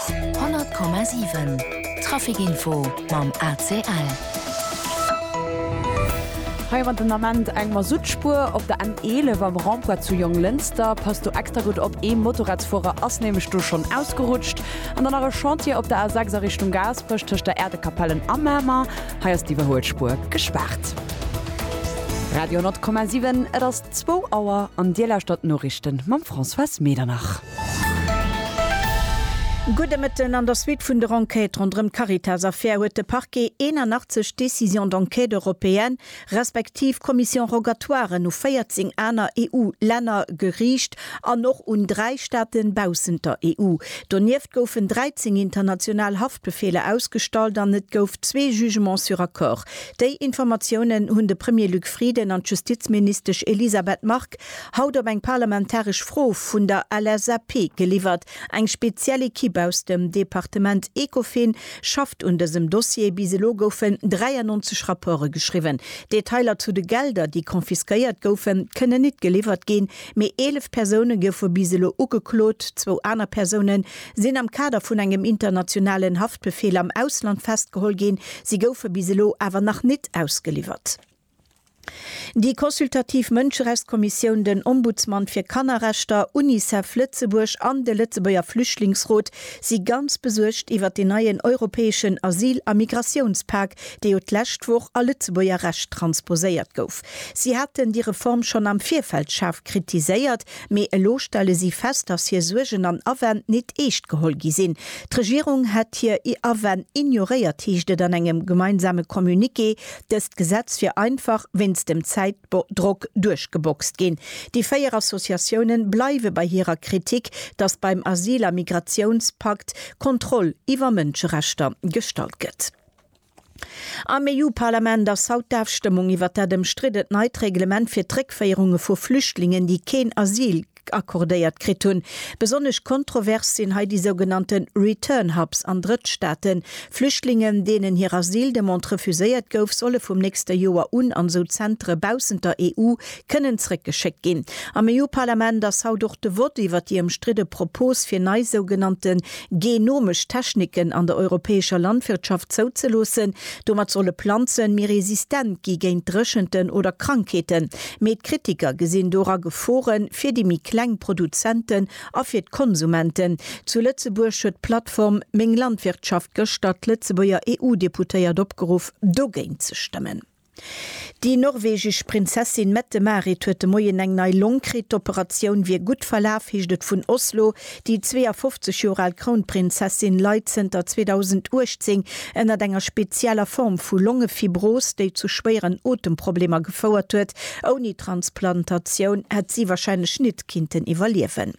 100,7 Traficinfo mam ACL. Hei am an den Ament eng Masuttspuer op der N11 am Rond-point zu Jonglënster. Pass do extra gutt op, ee Motorradsfuerer ass nämlech do schonn ausgerutscht. An dann nach e Chantier op der A6 a Richtung Gaasperech tëscht der Äerdekapellen a Mamer. Hei ass d'Iwwerhuelspuer gespaart. Radio 100,7 Et ass zwou Auer an Dir lauschtert d'Noriichten mam Françoise Medernach. Gudde Mëtten, An der Suite vun der Enquête ronderëm d'Caritas-Affär huet de Parquet 81 Décisions d'enquête européennes respektiv Commissions rogatoires u 14 aner EU-Länner geriicht an och un dräi Staate baussent der EU. Donieft goufen 13 international Haftbefeeler ausgestallt an et gouf zwee Jugements sur accord. Déi Informatiounen hunn de Premier Luc Frieden an d'Justizministesch Elisabeth Margue Haut op eng parlamentaresch Fro vun der LSAP geliwwert. Eng speziell Ekipp aus dem Departement Ecofin schafft un dësem Dossier. Bis elo goufen 93 Rapporte geschriwwen. Detailer zu de Gelder, déi confisquéiert goufen, kënnen nit geliwwert ginn. Mee 11 Persoune goufe bis elo ugeklot. Zwou aner Persoune sinn am Kader vun engem internationalen Haftbefeel am Ausland festgeholl ginn. Si goufe bis elo awer nach nit ausgeliwwert. Déi consultativ Mënscherechtskommissioun, den Ombudsman fir Kannerrechter, Unicef Lëtzebuerg an de Lëtzebuerger Flüchtlingsrot si ganz besuergt iwwert deen neien europäeschen Asyl a Migratiounspak, dee jo d'lescht Woch a Lëtzebuerger Recht transposéiert gouf. Si haten déi Reform schonn am Virfeld schaarf kritiséiert, mee elo stelle si fest, dass hir Suergen an Awänn nit eescht geholl gi sinn. D'Regierung hätt hir Awänn ignoréiert, heescht et an engem gemeinsame Communiqué. Dëst Gesetz wier einfach wéinst dem Zäitdrock duerchgeboxt ginn. Déi véier Associatiounen bleiwe bei hirer Kritik, datt beim Asyl a Migratiounspakt Kontroll iwwer Mënscherechter gestallt gëtt. Am EU-Parlament ass haut d'Afstëmmung iwwer dat ëmstriddent neit Reglement fir d'Réckféierunge vu Flüchtlingen, déi keen Asyl Chèque accordéiert kritt hunn. Besonnesch kontrovers sinn hei déi sougenannte Return Hubs an Drëttstaaten. Flüchtlingen, deenen hir Asyldemande refuséiert gouf, solle vum nächste Joer un an esou Zentere baussent der EU kënnen zréckgeschéckt ginn. Am EU-Parlament ass haut och de Vott iwwert déi ëmstridde Propos, fir nei sougenannte genomesch Techniken an der europäescher Landwirtschaft zouzeloossen. Domat solle Planzen méi resistent gi géint Dréchenten oder Krankheeten. Mee d'Kritiker gesinn dora Gefore fir déi méi kleng Produzenten a fir d'Konsumenten. Zu Lëtzebuerg huet d'Plattform Meng Landwirtschaft gëschter d'Lëtzebuerger EU-Deputéiert opgeruff, dogéint ze stëmmen. Déi norwegesch Prinzessin Mette-Marit huet de Moien eng nei Long kritt. D'Operatioun wier gutt verlaf, heescht et vun Oslo. Déi 52 Joer al Krounprinzessin leit zënter 2018 ënnert enger spezieller Form vu Longefibros, déi zu schwéieren Otemproblemer gefouert huet. Ouni Transplantatioun hätt si warscheinlech nit kinnten iwwerliewen.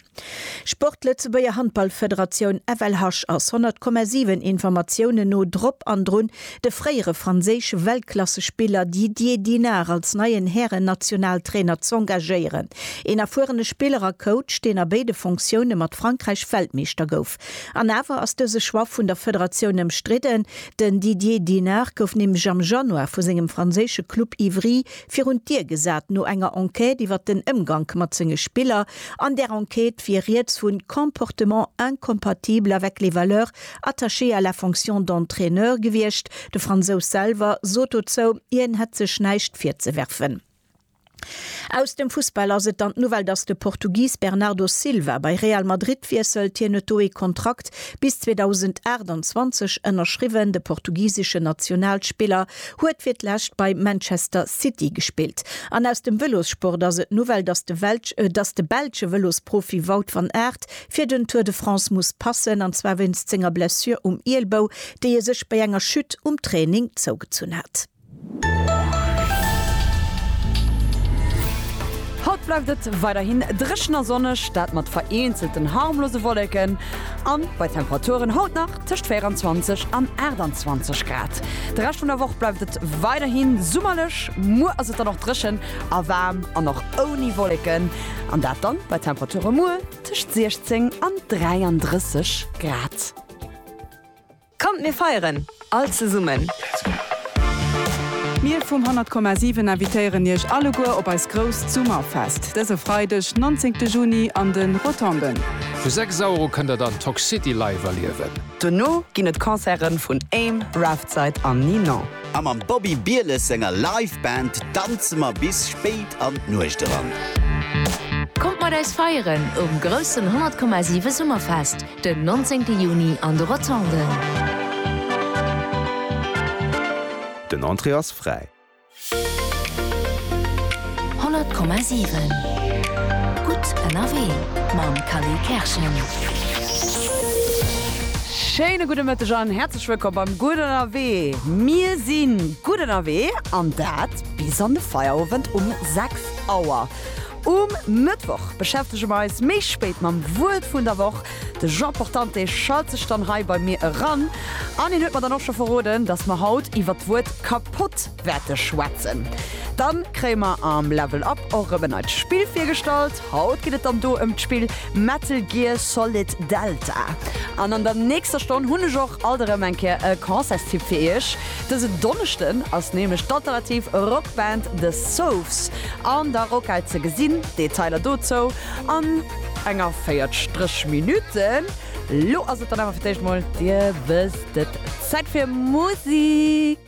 Sport Lëtzebuerger Handballfederatioun FLH ass 100,7 Informatiounen no drop an drun, De fréiere franséische Weltklassespiller Didier Dinard als neien Härennationaltrainer z'engagéieren. Een erfuerene Spiller a Coach, deen a béide Funktioune mat Frankräich Weltmeeschter gouf. An awer ass dëse Choix vun der Federatioun ëmstridden. Den Didier Dinard gouf nämlech am Januar vu sengem franséische Club Ivry virun d'Dier gesat no enger Enquête iwwer den Ëmgank mat senge Spiller. An där Enquête wier rieds vu Comportement incompatible avec les valeurs Attaché à la fonction d'entraîneur gewiescht. De Fransous selwer sot dozou, hien hätt sech näischt virzewerfen. Aus dem Fussball ass et dann d'Nouvelle, datt de Portugis Bernardo Silva bei Real Madrid wiesselt. Hien huet do ee Kontrakt bis 2028 ënnerschriwwen. De portugiseschen Nationalspiller huet fir d'lescht bei Manchester City gespillt. An aus dem Vëlossport ass et d'Nouvelle, datt de belsche Vëlosprofi Wout van Aert fir den Tour de France muss passen, an zwar wéinst senger Blessure um Ielbou, déi e sech bei enger Chute um Training zougezunn hat. Haut bleift et weiderhin dréchen a sonneg, dat mat vereenzelten harmlose Wolleken an bei Temperaturen haut nach tëscht 24 an 28 Grad. De Rescht vun der Woch bleift et weiderhin summerlech, muer ass et dann och dréchen a waarm an och ouni Wolleken. An dat dann bei Temperature muer tëscht 16 an 33 Grad. Kommt mir feieren all zesummen! Mir vum 100 Komma 7 invitéieren iech alleguer op eist grousst Summerfest dëse Freideg 19 Juni an de Rotonden. Vu 6 Euro kënnt der dann Toxcity live erliewen. Dono ginn et Concerte vun Aim, Raftside an Ninon. A mam Bobby Bieles senger Live Band danze mer bis spéit an d'Nuecht eran. Kommt mat eis feieren um groussen 100,7 Summerfest den 19 Juni an de Rotonden. Den Entrée ass fräi. 100,7 Gutt ënnerwee mam Khalil Kerschen. Schéine gudde Mëtteg an häerzlech. Häerzlech wëllkomm beim Gutt Ënnerwee! Mir si gutt ënnerwee an dat bis an de Feierowend um 6 Auer. Um Mëttwoch beschäftege mer eis méi spéit mam Wuert vun der Woch. De Jean Portante schalt sech dann hei bei mir eran an hien huet mer dann och scho verroden, dass mer haut iwwer d'Wuert kapott Werte schwätzen. Dann kréie mer am Level Up och erëm en neit Spill virgestallt. Haut geet et dann do ëm d'Spill Metal Gear Solid Delta. An an der nächster Stonn hunn ech och alt erëm eng Kéier e Concertstipp fir iech. Dësen Donneschden ass nämlech d'alternativ Rock Band The Soves an der Rockhal ze gesinn. Detailer dozou an enger véiertstrech Minutte. Lo ass et dann awer fir d'éischt mol, dir wësst et, Zäit fir Musik.